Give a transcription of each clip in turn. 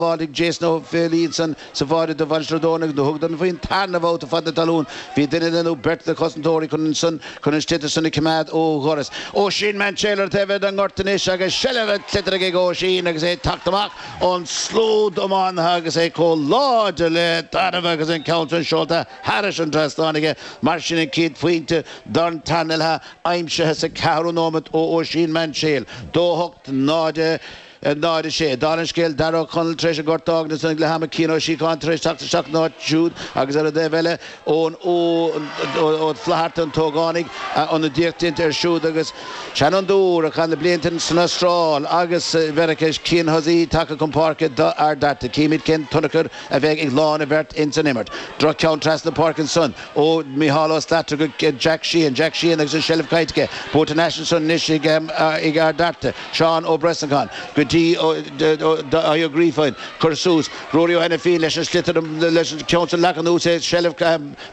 Bháiligh Jason Ó Féilídhson sa bháire do Mhainistir Ó dTorna do thugadar faoin tarna bhabhta fad na talún. Bhí duine nó beirt de chosantóirí chun an san chun an sliotar san a coimeád ó dhoras Oisín Mainséil ar thaobh an ghoirt anois agus seilbh an tsliotair ag Oisín agus é ag teacht amach ón slua iománaithe agus é chomh láidir le tarbh agus an ceann sin seolta thairis an trasnáin aige. Mar sin an chéad phointe don tarna leath aimsithe sa ceathrú nóiméad ó Oisín Man Taylor. 2-8 0 0-6. Dála an scéil, Darragh Ó Conaill tar éis an gort a fhágaint ag leath ama, Cian Ó Síocháin tar éis teacht isteach ina áit siúd agus, ar an dtaobh eile, Eoin Ó Flaithearta, an t-ógánach, ionadaíocht déanta air siúd agus an seanfhondúir, a chaith na blianta san Astráil agus i Mheiriceá, Cian Hussey tagtha chun páirce d'Ard Fhearta. Chímid cén tionchar a bheidh ag láin an bheirt ins an imirt. Droch-cheann trasna na páirce ansan ó Micheál Ó Slatara go Jack Sheehan. Jack Sheehan agus an tseilbh caillte aige. Buaite thar n-ais ansan anois ag Ard Fhearta. Seán Ó Brosnacháin go Dáithí Ó Grífín, cur suas, Ruairí Ó hAinifín leis an sliotar, leis an gceann san leag anuas é, seilbh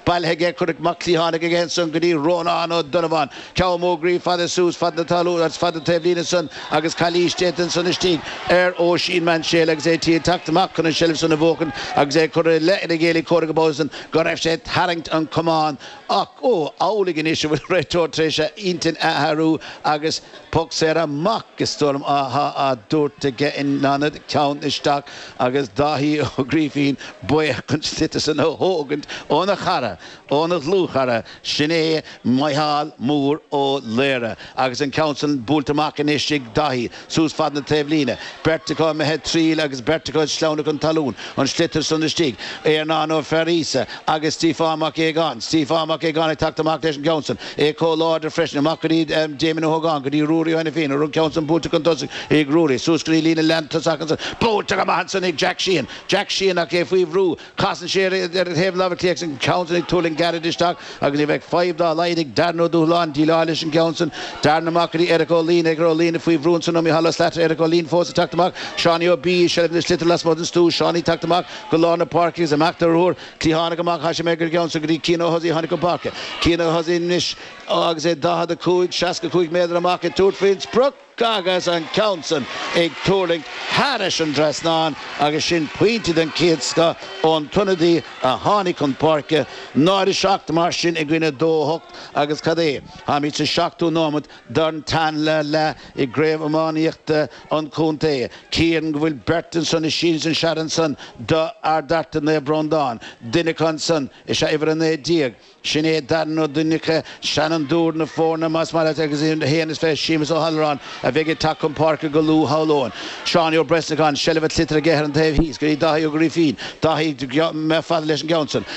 bailithe aige, curtha amach cliathánach aige ansan go dtí Rónán Ó Donnabháin, ceann mór groí fada suas fad na talún agus fad na taobhlíne san agus calaois déanta ansan istigh ar Oisín Mainséil agus é tí ag teacht amach chun an tseilbh san a bhuachaint agus é curtha i leith an chéile comhraic ar ball san go raibh sé ag tarraingt an camán ach ó, an amhlaidh anois a bhfuil an réiteoir tar éis a intinn a athrú agus. Poc saor amach is dóigh liom atá tabhartha aige in ionad ceann isteach agus Dáithí Ó Grífín buíoch an sliotar san a thógaint óna chara, óna dhlúthchara sin é Micheál Mór Ó Laoire agus an ceann san buailte amach anois ag Dáithí suas fad na taobhlíne, beirt acu imithe triail agus beirt acu ag sleamhnadh chun talún, an sliotar san istigh, Éarnán Ó Fearghusa agus Stiofán Mac Aogáin, Stiofán Mac Aogáin ag teacht amach leis an gceann san. É comh láidir freisin amach go dtí Damien Ó hÓgáin, go dtí Ruairí Ó hAinifín agus an ceann san buailte chun tosaigh ag Ruairí, suas go dtí líne lántosaigh ach ansan buailte amach ansan ag Jack Sheehan. Jack Sheehan, ach é faoi bhrú, casann sé ar ar thaobh na láimhe clé ach an ceann san ag tuirlingt gairid isteach agus ní bheidh fadhb dá laghad ag Darren Ó Dúshláine déileáil leis an gceann san. Darren, amach go dtí Eric Ó Luíne, Eric Ó Luíne, faoi bhrú ansan ó Mhicheál Ó Slatara, Eric Ó Luíne, fós ag teacht amach, Seánie Ó B. i seilbh an tsliotair lasmuigh den stua, Seánie ag teacht amach go lár na páirce agus ag imeacht ar ruathar, Dtí tháinig amach thairis é, an ceann san go dtí Cian Hussey a tháinig chun páirce, Cian Hussey anois agus é 45, 65 méadar amach ag tabhairt faoin sprioc agus an ceann san ag tuirlingt thairis an trasnáin agus sin pointe den chéad scoth ón t-ionadaí a tháinig chun páirce 0-7 mar sin i gcoinne 2-8 agus cad é? Táimid sa seachtú nóiméad don tarna leath i gCraobh Iománaíochta an Chontae. Cíorann go bhfuil beirt ansan i Seans and Sead ansan do Ard Fhearta Naomh Breandán. Duine acu ansan is ea uimhir a naoi déag. Sin é Darren Ó Duinneacha, seanfhondúir na foirne más maith leat agus a haon is fiche Séamus Ó hAllmhuráin a bheidh ag teacht chun páirce go luath shamhlóinn. Seánie Ó Brosnacháin seilbh an tsliotair aige ar an taobh thíos go dtí Dáithí Ó Grifín. Dáithí, mbeadh fada leis an gceann san.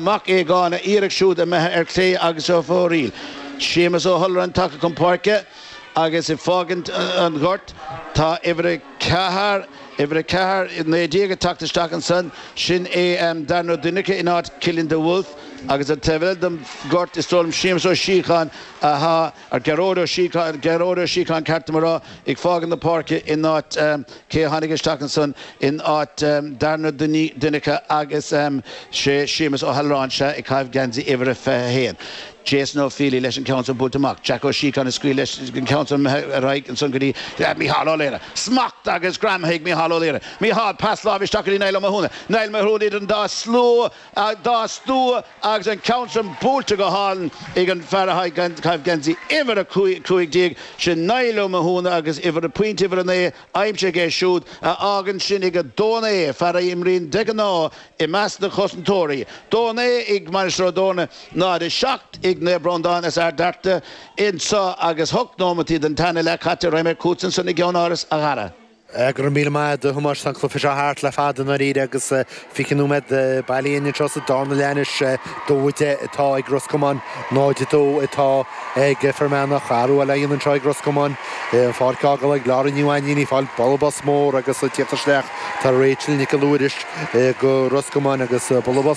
Mac Aogáin, a iarracht siúd imithe ar clé agus ar fóraoil. Séamus Ó hAllmhuráin tagtha chun páirce agus ag fágaint an ghoirt. Tá uimhir a ceathair, uimhir a ceathair, naoi déag ag teacht isteach ansan. Sin é Darren Ó Duinneacha in áit Chillian de Wulf agus an taobh eile den ghort is dóigh liom Séamus Ó Síocháin atá, Ar Gearóid Ó Síocháin, Gearóid Ó Síocháin ceart dom a rá, ag fágaint na páirce in áit cé a tháinig isteach ansan in áit Darren Ó Duinneacha agus is é Séamus Ó hAllmhuráin, sea, ag caitheamh geansaí uimhir a 21. Jason Ó Feely leis an ceann san buailte amach. Jack Ó Síocháin ag scaoileadh leis an ceann san imithe ar aghaidh ansan go dtí Micheál Ó Laoire. Smacht agus greim ag Micheál Ó Laoire. Micheál, pas láimhe isteach go dtí Niall Ó Mathúna. Niall Ó Mathúna idir an dá stua. Ag dá stua agus an ceann sin buailte go hálainn ag an bhfear atá ag caitheamh geansaí uimhir a cúig déag, sin Niall Ó Mathúna agus uimhir, pointe uimhir a naoi aimsithe aige siúd, a fhágann sin ag a dó a naoi, fear a imríonn de ghnáth i measc na gcosantóirí. Dó a naoi ag Mainistir Ó dTorna, 0, 7 ag Naomh Breandán as Ard Fhearta, anso agus hocht nóimeataí den tarna leath caite raghaimid chugatsa ansan i gceannáras a Dhara. Go raibh míle maith agat a Thomáis an cluiche seo thart le fada i ndáiríre agus fiche nóiméad bailithe linn anseo sa darna leath anois. 2-10 atá ag Ros Comáin, 0-2 atá ag Fear Manach. Athrú eile á dhéanamh anseo ag Ros Comáin. An pháirc á fhágáil ag Laura Ní Mhainnín, í ag fáil bualadh bos mór agus ag tíocht isteach tá Rachel Nic Mhuiris do Ros Comáin agus bualadh bos.